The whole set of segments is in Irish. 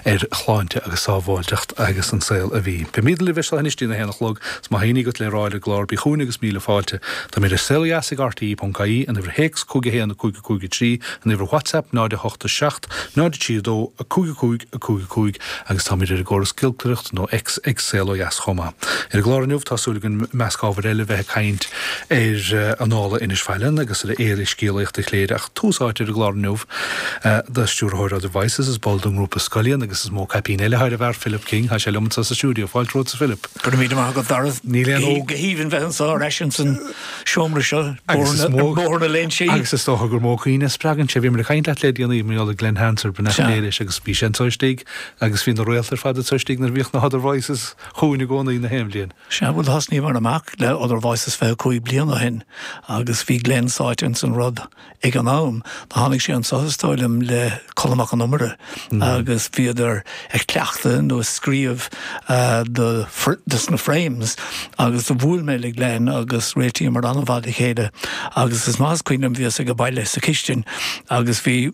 ar shláinte agus sábháilteacht agus an saol a bhí. Beimid libh as seo anois dtína haon a chlog. 'S má tá éinní agat le rá ar an gclár bí chugainn agus míle fáilte. Táimid ar Saol Ó Dheas ag RTÉ.ie, an uimhir théacs 51 5 5 3, an uimhir Whatsapp 0 8 7 0 3 2 5 5 5 5 agus táimid ar an gcóras giolcaireachta nó X ag Saol Ó Dheas chomh maith. Ar an gclár inniu tá súil againn i measc ábhair eile bheith ag caint ar Annála Inis Faithlinn agus ar Fhéile Scéalaíocht Chléire, Tús áite ar an gclár inniu do stiúrthóir Other Voices, is ball den ngrúpa Scullion agus is mó caipín eile thar a cheann Philip King, tá sé liom anseo sa stiúideo. Fáilte romhat, a Philip. Go raibh míle maith agat, Dara. Ní haon ní. Go haoibhinn bheith anseo ar ais ins an seomra seo ar Bhóthar na Léinsí. Agus is dócha gur mó cuimhne a spreagann sé. Bhí mé ag caint leat le déanaí, mar gheall ar Glen Hansard, ba mhinic mé air agus bhí sé anseo istigh agus bhí na réalta ar fad anseo istigh nuair a bhíodh na hOther Voices chugainn i gcónaí, na haon bhliain. Sea, bhuel thosnaíomar amach le Other Voices 25 bliain ó shin agus bhí Glen sáite ins an rud ag an am. Tháinig sé anseo is dóigh liom le Colm Mac Con Iomaire agus bhíodar ag cleachtadh nó ag scríobh do dos na Frames agus do bhuail mé le Glen agus réitíomair an-mhaith le chéile agus is maith is cuimhin liom bhíos age baile sa chistin agus bhí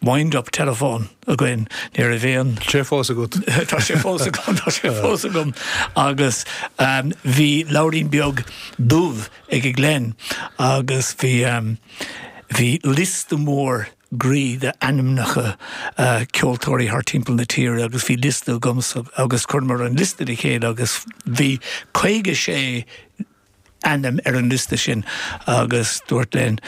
Wind up telephone againn ní raibh aon. Tá sé fós agat. Tá sé fós agam, tá sé fós agam. Agus um, bhí leabhairín beag dubh age Glen agus bhí um, bhí liosta mór groí d'ainmneacha uh, ceoltóirí thar timpeall na tíre agus bhí liosta agamsa agus chuireamar na liostaí le chéile agus bhí 56 ainm ar an liosta sin agus dúirt Glen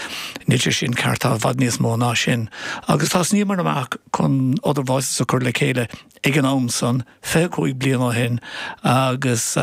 níl sé sin ceart, tá i bhfad níos mó ná sin. Agus thosnaíomar amach chun Other Voices a chur le chéile ag an am san, 25 bliain ó shin, agus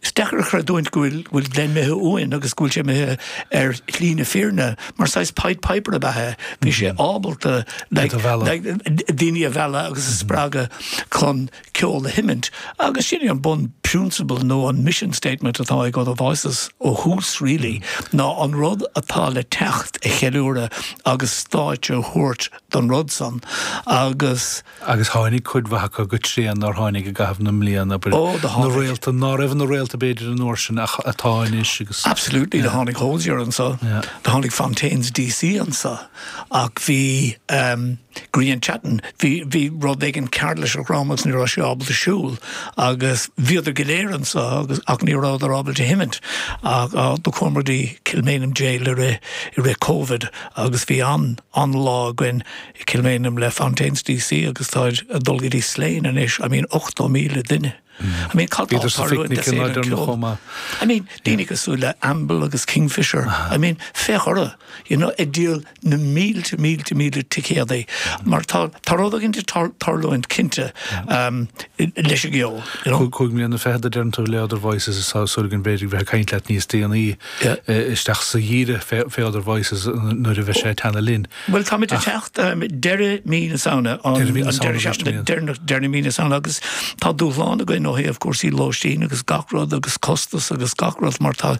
is deacair a chreidiúint go bhfuil Glen imithe uainn agus go bhfuil sé imithe ar shlí na fírinne mar saghas Pied Piper ab ea é, bhí sé ábalta daoine a mhealladh agus a spreagadh chun ceol a sheimint. Agus sin é an bunphrionsabal nó an mission statement atá ag Other Voices ó thús really, ná an rud atá le teacht a cheiliúradh agus stáitse a thabhairt don rud san agus. Agus tháinig cuid mhaith acu go tréan nár tháinig i gcaitheamh na mblian abair, Ó, do tháinig. réalta ná raibh ina réalta b'fhéidir an uair sin ach atá anois agus. Absolutely, do tháinig Hozier anseo, do tháinig Fontaines DC anseo. Ach bhí ehm, Grian Chatten, bhí, bhí rud éigin cearr leis a dhrom agus ní raibh sé ábalta siúl agus bhíodar go léir anseo agus, ach ní rabhadar ábalta sheimint ach ah, do chuamar go dtí Kilmainham Jail i rith, i rith Covid agus bhí an, an lá againn i Kilmainham le Fontaines DC agus táid a' dul go dtí Slane anois, I mean ochtó míle duine. I mean cad tá ag tarlú in Éirinn ó thaobh ceoil chomh maith. I mean daoine cosúil le Amble agus Kingfishr I mean féach orthu you know ag díol na mílte mílte mílte ticéadaí mar tá tá rud éigint ag tarlúint cinnte leis an gceol you know. Cúig mbliana fichead a deireann tú le Other Voices is tá súil go mbeimid ag caint leat níos déanaí isteach sa bhfómhar fé Other Voices nuair a bheidh sé ag teannadh linn. Bhuel táimid ag teacht deireadh mhí na Samhna an deireadh seachtaine deireanach de mhí na Samhna agus tá dúshlán againn ó thaobh cúrsaí lóistín agus gach rud agus costas agus gach rud mar tá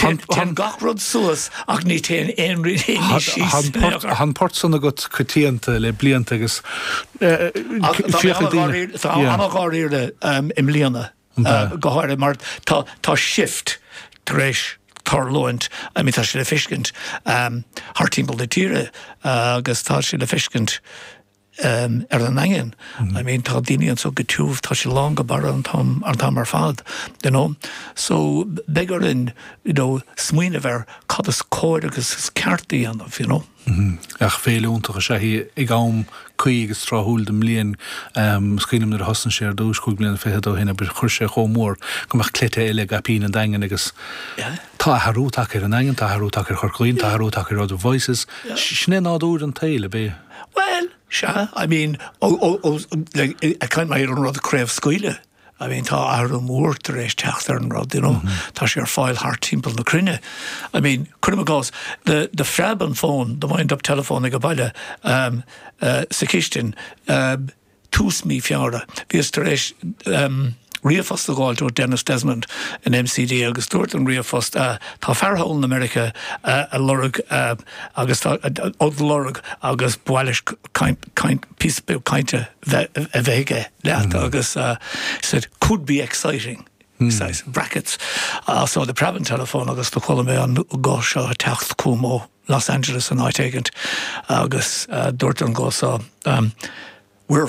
téann gach rud suas ach ní théann aon rud síos. Tá an pháirt san agat coitianta le blianta agus féachaint daoine. Tá ana-dháiríre i mbliana. an bea. go háirithe mar tá shift tar éis tarlúint, I mean tá sé le feiscint thart timpeall na tíre agus tá sé le feiscint ar an Daingean, I mean tá daoine anso go tiubh, tá sé lán go barra an t-am an t-am ar fad you know so beidh orainn you know smaoineamh ar cad is cóir agus is ceart a dhéanamh you know. Ach féile iontach is ea í ag am cuí agus tráthúil den bhliain. Smaoiním nuair a thosnaigh sé ar dtúis chúig mbliana fichead ó shin abair, chuir sé chomh mór go mbeadh cleite eile i gcaipín an Daingin agus tá athrú tagtha ar an Daingean, tá athrú tagtha ar Chorca Dhuibhne, tá athrú tagtha ar Other Voices. Sin é nádúr an tsaoil, ab ea? Bhuel, sea, I mean, ag caint mar an rud a chraobhscaoileadh. I mean tá athrú mór tar éis teacht ar an rud you know tá sé ar fáil thart timpeall na cruinne. I mean cuirim i gcás do do phreab an fón the wind up telephone aige baile ehm eh sa chistin ehm tús mhí Feabhra bhíos tar éis ehm ríomhphost a dh'fháilt ó Denis Desmond in MCD agus dúirt an ríomhphost ah tá fear thall in America ah a' lorg ah agus tá ad lorg agus ba mhaith leis caint caint píosa beag cainte a bheith aige leat agus said could be exciting says in brackets so do phreab an telephone agus do chuala mé an guth seo ag teacht chugam ó Los Angeles nó áit éigint agus dúirt an guth seo we're